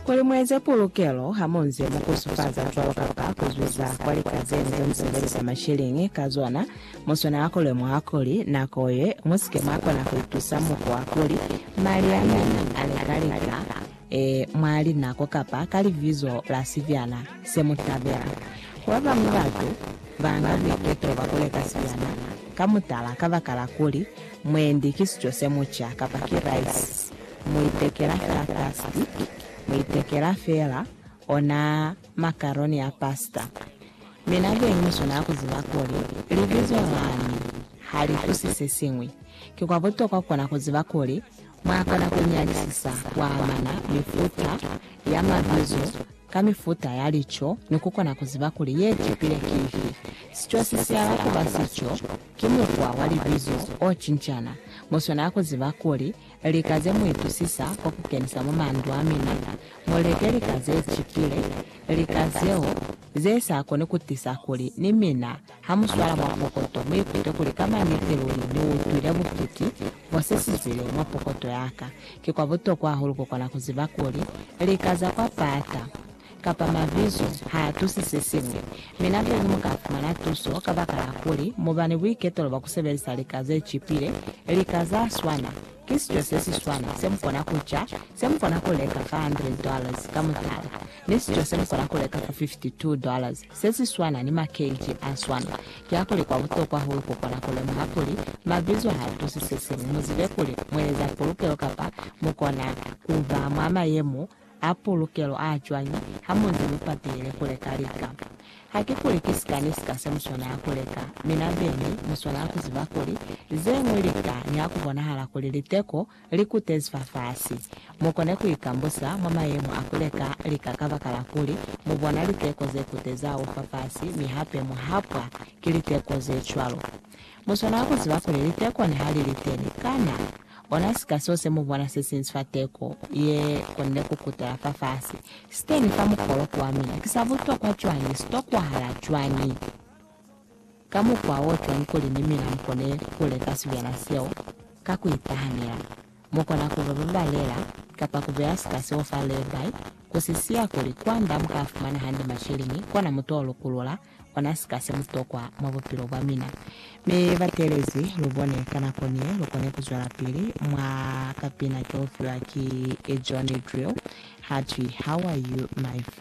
Kuli mueze pulukelo hamunze mukusufaza cwalo kapa kuzwiza kwa lika zenu zemusebelisa masheleñi ka zona, muswanela kulemuha kuli nako ye musike mwakona kuitusa mukwa kuli mali a mina ale ka lika e mwa linako kapa ka libizo la sibyana semutabela. Babañwi batu banga buiketo bwa kuleka sibyana ka mutala kabakala kuli mwendi ki sico semuca kapa ki raisi. mu itekela fela pasti, mu itekela fela ona makaroni a pasta. Mi na be ni swanela ku ziba kuli Libizo lani ha li tusi se siñwi. Ki kwa butokwa kona ku ziba kuli mwa kona ku nyalisisa ku amana mifuta ya mabizo ka mifuta ya lico ni ku kona ku ziba kuli ye tupile ki ifi. Sico si siala ku ba sico Ki mukwa wa libizo o cincana. Mu swanela ku ziba kuli, lika ze mu itusisa kwa ku kenisa mwa mandu a mina, mu leke lika ze cipile, lika zeo ze sa koni ku tisa kuli ni mina ha mu swala mwa pokoto mu ikute kuli ka maniti luli ni utwile butuki bwa se si zile mwa pokoto ya ka. Ki kwa butokwa hahulu ku kona ku ziba kuli, lika za kwa pata kapa mabizo ha a tusi se siñwi, mi na kuli mu ka fumana tuso kabakala kuli mu ba ni buiketelo bwa ku sebelisa lika ze cipile, lika za swana, ki sico se si swana se mu kona ku ca, se mu kona ku leka fa hundred dollars, ka mutala, ni sico se mu kona ku leka fa fifty two dollars, se si swana ni makeji a swana. Kiakuli kwa butokwa hulu ku kona ku lemuha kuli mabizo ha a tusi se siñwi, mu zibe kuli mu eza pulukelo kapa mu kona ku ba mwa mayemo A pulukelo a cwañi ha mu nze mu patile ku leka lika? Hakikuli ki sika ni sika se mu swanela ku leka, mi na beñi mu swanela ku ziba kuli ze ñwi lika ni ha ku bonahala kuli liteko li kutezi fafasi. Mu kone ku ikambusa mwa mayemo a ku leka lika kabakala kuli mu bona liteko ze kutezi hahulu fafasi mi hape mu hapwa ki liteko ze cwalo. Mu swanela ku ziba kuli liteko ni ha li li teni, kana Ona sika seo se mu bona se sinzi fa teko ye konile ku kutela fafasi siteni fa mukoloki wa mina ki sa butokwa cwañi, si tokwahala cwañi, ka mukwa o cwañi kuli ni mina mu kone ku leka sibyana seo ka ku itahanela. Mu kona ku ba babalela, kapa ku beya sika seo fa lay-by, ku si siya kuli kwand'a mu ka fumana hande masheleni, kona mu t'o lukulula, ona sika se mutokwa mwa bupilo bwa mina. Mi batelezi, lubone, ka nako nie lukone kuzwelapili mwa kapina keufiwa ki John Drill, hatwi, How are you, my friend?